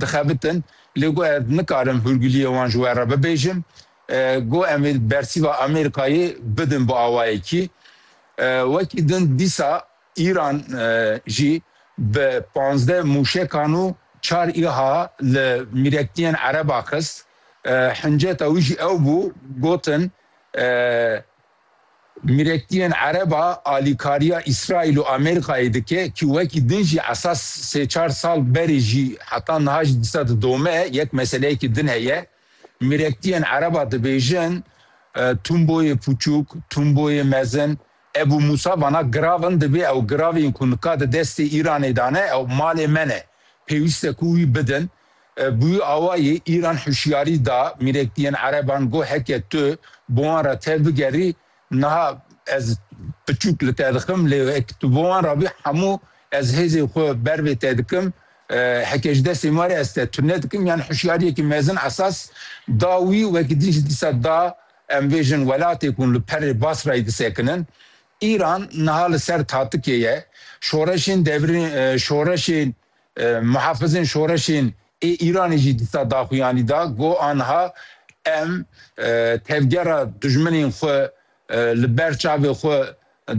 Dixebitin, lê got ez nikarim hûrguliyê wan ji we re bibêjim. Got em ê bersîva Amerîkayê bidin bi awayekî. Wekî din dîsa Îran jî bi pazdeh mûşekan û çar îha li mîrektiyên Ereba xist. Hinceta wî jî ew bû gotin Miletiyên Ereb a alîkariya Îsraîl û Amerîkayê dike ku wekî din jî esas sê çar sal berê jî heta niha jî dîsa didome yek meseleyekî din heye. Miletiyên Ereb a dibêjin Tûmboyê Pûçûk, Tûmboyê Mezin. Ebû Mûsa vana girav in dibê ew giravên ku nika di destê Îranê de ne ew malê me ne. Pêwîste ku wî bidin. Bi wî awayî Îran hişyarî da mîrekdiyên ereban ku heke tu bi wan re tebigerî, niha ez piçûk li te dixim, lê wek tu bi wan re bî hemû ez hêzê xwe ber vê te dikim, heke ji destê me re ez te tune dikim yan hişyariyekî mezin esas da wî, wek dî ji dîsa da em vê jin welatê ku li perê Basrayî disekinin. Îran niha li ser tatikê ye, şoreşên devrîn, şoreşên Muhafizên şoreşên ê Îranê jî dîsa daxuyanî da ku anha em tevgera dijminên xwe li ber çavê xwe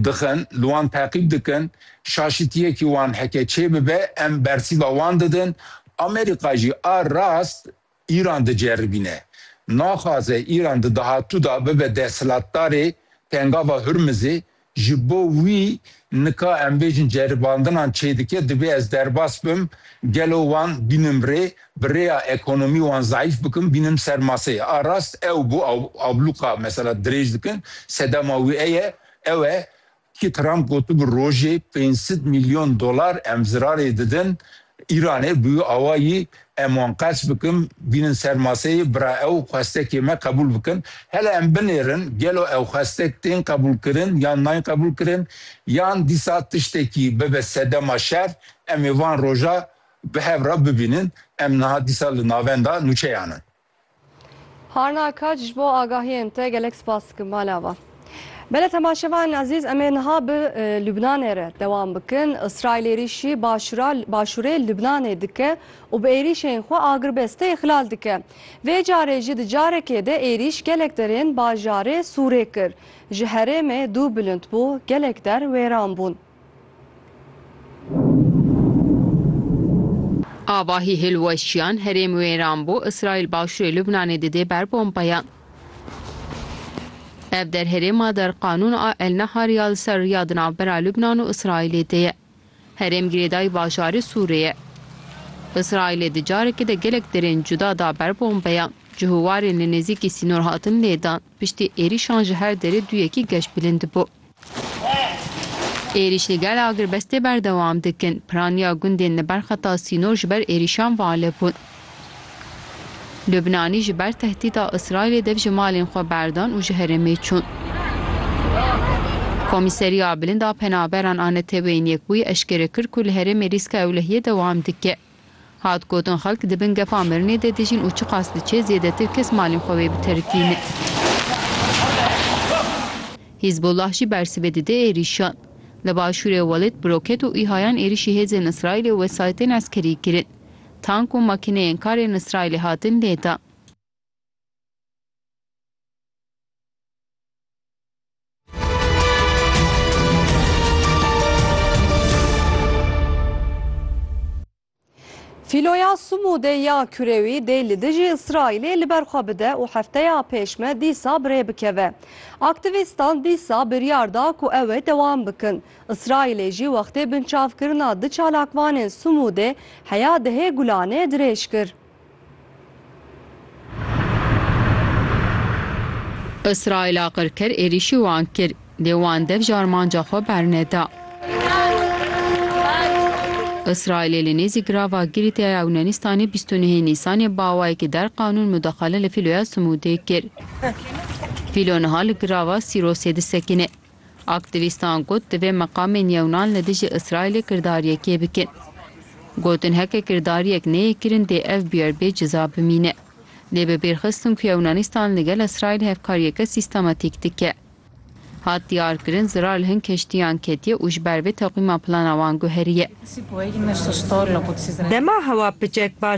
dixin, li wan teqîb dikin, şaşitiyekî wan heke çêbibe em bersîva wan didin. Amerîka jî a rast Îran diceribîne. Naxwaze Îran di dahatû de bibe desthilatdarê pengava Hurmizê, ji bo wî nika em bêjin ceribandinan çêdike divê ez derbas bim gelo wan bînim rê, bi rêya ekonomî wan zayîf bikim bînim ser maseyê. A rast ew bû ablûqa mesela dirêj dikin, sedema wî eye, ew e Yekî Trump gotibû rojê pênc sed mîlyon dolar em zirarê didin Îranê, bûyû awa yî em wan qerç bikim, bînin ser maseyê, bira ew xwestekê me qebûl bikin. Hele em binêrin gelo ew xwestek tên qebûlkirin yan nayên qebûlkirin yan dîsa tiştekî bibe sedema şer em ê van roja bi hev re bibînin. Em niha dîsa li navenda nûçeyan in. Harna Kac ji bo agahiyên te gelek spas dikim mala wan. Bele temaşevan ezîz em ê niha bi Lubnanê re dewam bikin. Îsraîl êrîşî başûra başûrê Lubnanê dike û bi êrîşên xwe agirbestê îxlal dike. Vê carê jî di carekê de êrîş gelek derên bajarê Sûrê kir. Ji herêmê dû bilind bû, gelek der wêran bûn. Avahî hilweşiyan, herêm wêran bû, Îsraîl başûrê Lubnanê didê ber bombeyan. Ev der herêma der qanûn a El Nahar ya li ser riya di navbera Lubnan û Îsraîlê de ye. Herêm girêdayî bajarê Sûrê ye. Îsraîlê di carekê de gelek derên cuda da ber bombeyan. Cihûwarên li nêzîkî sînor hatin lêdan. Piştî êrîşan ji her derê du yekî geş bilind bû. Êrîş li gel agrbestê berdewam dikin. Piraniya gundên li ber xeta sînor ji ber êrîşan valib bûn. Lubnanî ji ber tehdîda Îsraîlê dev ji malên xwe berdan û ji herêmê çûn. Komîseriya Bilind a Penaberan a Neteweyên Yekbûyî eşkere kir ku li herêmê rîska ewlehiyê dewam dike. Hat gotin xelk di bin gefa mirinê de dijîn û çiqas diçê zêdetir kes malên xwe wê biterikîne. Hîzbullah jî bersivê dide êrîşan. Li başûrê Welêt bi roket û îhayan êrîşî hêzên Îsraîlê û wesayîtên eskerî kirin. Tank û makîneyên kar ên Îsraîlê hatin lêdan. Fîloya Sumûdê ya Kurewî dê li dijî Îsraîlê li ber xwe bide û hefteya pêşme dîsa birê bikeve. Aktîvîstan dîsa biryar da ku ew ê dewam bikin. Îsraîlê jî wextê binçavkirina du çalakvanên Sumûdê heya dihê Gulanê dirêj kir. Îsraîla qirker êrîşî wan kir, lê wan dev ji armanca xwe berneda. Îsraîlê li nêzî girava Girîtê ya Ewwnenîstanê bîst û nehê Nîsanê bi awayekî der qanûn mudaxale li Fîloya Simûdê kir. Fîlo niha li girava Sîrosê disekine. Aktîvîstan got divê meqamên yewnan li dijî Îsraîlê kirdar yekê bikin. Gotin heke kirdariyek neyê kirin dê ev bûyer bê ciza bimîne. Lê bi bîr xistin ku Yewnanîstan li gel Îsraîl hevkariyeke sîstematîk dike. Hat diyar kirin zirar li hin keştiyan ketiye û ji ber vê teqwîma plana wan guheriye. Dema hewa piçek baş